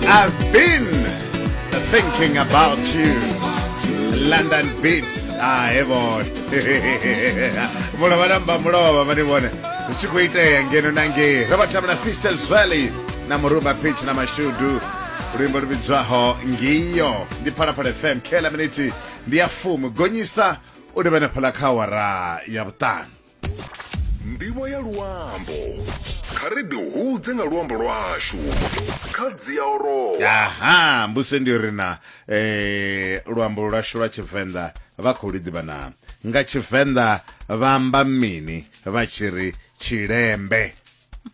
I've been thinking about you. London Beats. Ah, heaven. Mulova namba mulova mani vone. Zwi khou itea ngeno na ngei. Ro vha tamba na Fistel Zweli na Muruba Pitch na Mashudu. Luimbo lu vhidzwaho Ngiyo. Ndi Phalaphala FM. Khela miniti ndi ya fumi. Gonyisa u livhana phala kha awara ya vhuṱanu. ndivho ya luambo kha ri ḓi hudze nga luambo lwashu kha dzia orowa aha mbuse ndi ri na eh, luambo lwashu lwa tshivenḓa vha khou liḓivha na nga tshivenḓa vha amba mini vha tshi ri tshilembe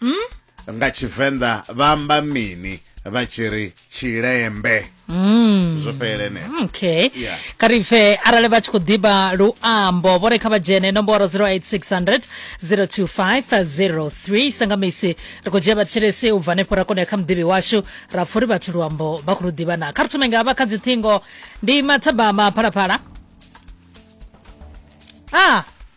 mm? nga tshivenḓa vha amba mini vha tshi ri tshilembe mm. zwo fhelela eneo mm, okay yeah. kha ri pfe arali vha tshi khou ḓiba luambo vho re kha vha dzhene nomboro 08600 02503 sangamisi ri khou dzhia vhathetshelesi u bva hanefho ra kona kha muḓivhi washu ra pfha uri vhathu luambo vha khou lu ḓivha na kha ri thome nga vha kha dziṱhingo ndi mathabama phalaphala a ah.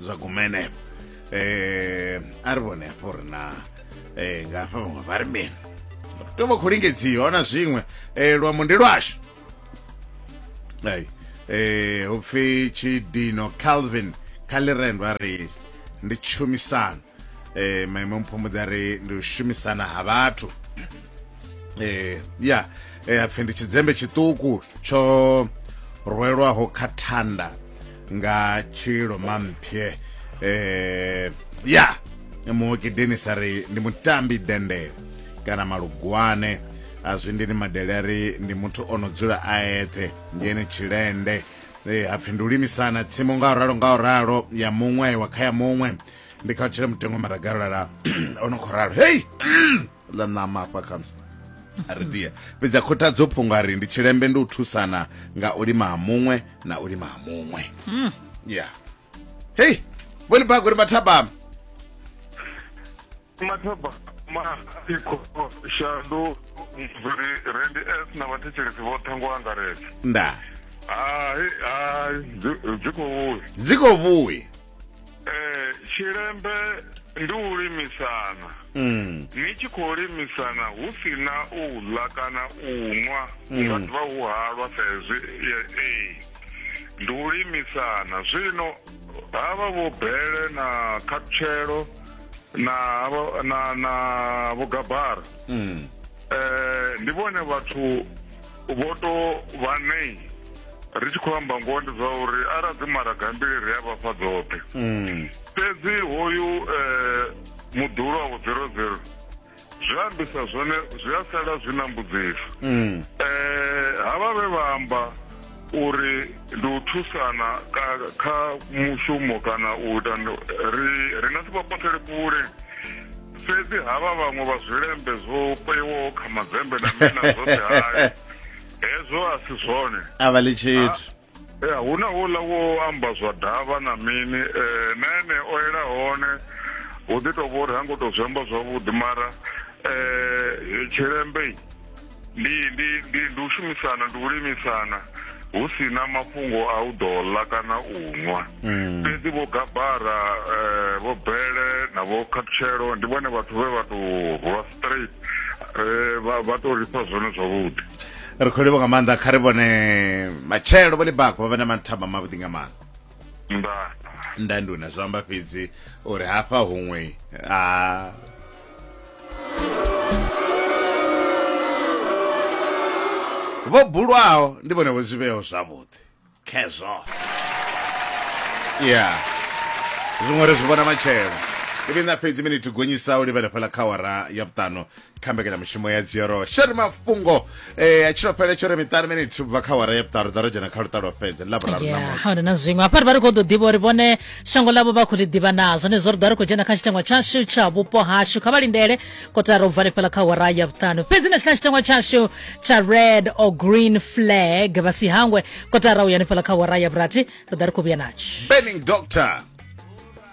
zwa gumene eh a ri vhone hafho ri na eh nga hafha vhaṅwe vha ri mini to vha khou lingedziwa hona zwiṅwe eh luambo ndi lwashu ai eh hupfi tshidino calvin kaliren vha ri ndi tshumisano eh maimo mphumudza ri ndi u shumisana ha vhathu eh ya eh apfe ndi tshidzembe tshiṱuku tsho rwelwaho kha thanda nga tshilo mampye eh ya muoki denis ari ndi mutambi dende kana malugwane a zwi ndi ni madele ari ndi muthu o no dzula a eṱhe ngeni tshilende eh apfe ndi u limisana tsimu nga u ralo nga u ralo ya muṅwe wa kha ya muṅwe ndi kha tshila mutengo maragalala ono khou ralo hei ḽa ṋama hafha khamusi a ri dia fhedzi a khothadzo phungo a ri ndi tshilembe ndi u thusana nga u lima ha muṅwe na u lima ha muṅwe ya hei vhoni bago ri mathabama mathaba maiko shandu mviri rendi s na vhathetshelesi vhoṱhe ngo angaredza nda hai hai dzi khou dzi khou vhuya eh tshilembe ndi u limisana mm. ni tshi khou limisana hu si na u ḽa kana u nwa mm. nga ḓivha hu halwa sa hezwi ee ndi u limisana zwino havha vho bele na khatshelo na na na vhugabara mm. eh ndi vhone vhathu vho to vha nei ri tshi khou amba ngoho ndi zwa uri arali dzi maraga mbili ri a vhafha dzoṱhe hmm. fhedzi hoyu um eh, muḓulu wa vho zero zero zwi ambisa zwone zwi a sala zwi na mbudziso um havha vhe vha amba uri ndi u thusana kha mushumo kana u ita ri nga si vha pothele kule fhedzi havha vhaṅwe vha zwilembe zwo peiwaho kha madzembe na mina zwoṱhe hayo hezwo a si zwone a vha ḽi tshithu ya hu na wouḽa wo amba zwa davha na mini um na ene o ela hone hu ḓi tou vha uri ha ngo tou zwi amba zwavhuḓi mara um tshilembe ndi ndi ndi ndi u shumisana ndi u limisana hu si na mafhungo a u ḓo ḽa kana u nwa mm. fhedzi vho gabara eh, vho bele na vho khathutshelo ndi vhone vhathu vhe vha tou rwa straight eh, vha tou ri fha zwone zwavhuḓi ri khou livho nga maanḓa kha ri vhone matshelo vho libako vha vha na mathamba mavhuḓi nga maanḓa nda nda nduna zwi amba fhedzi uri hafha huṅwe a vho bulwaho ndi vhone vho zwivheo zwavhuḓi khezwo ya zwiṅwe ri zwi vhona matshelo ivi na fhedzi miniti gonyisa u livhela fhala kha wara ya vhuṱanu kha mbekanyamushumo ya dzioro sheri mafhungo eh tshilo phele tsho re miṱanu minute ubva kha wara ya vhuṱaru ḓa ro dzhena kha luṱa lwa fhedza ḽa vhuraru na musi hone na zwiṅwe hafha ri vha ri khou ḓo ḓivha uri vhone shango ḽavho vha khou ḽi ḓivha na zwone zwo ri ḓa ri khou dzhena kha tshitengwa tshashu tsha vhupo hashu kha vha lindele kotara u vale fhela kha wara ya vhuṱanu fhedzi na tshila tshitengwa tshashu tsha red or green flag vha si hangwe kotara u yani fhela kha wara ya vhurathi ri ḓa ri khou vhuya natsho burning doctor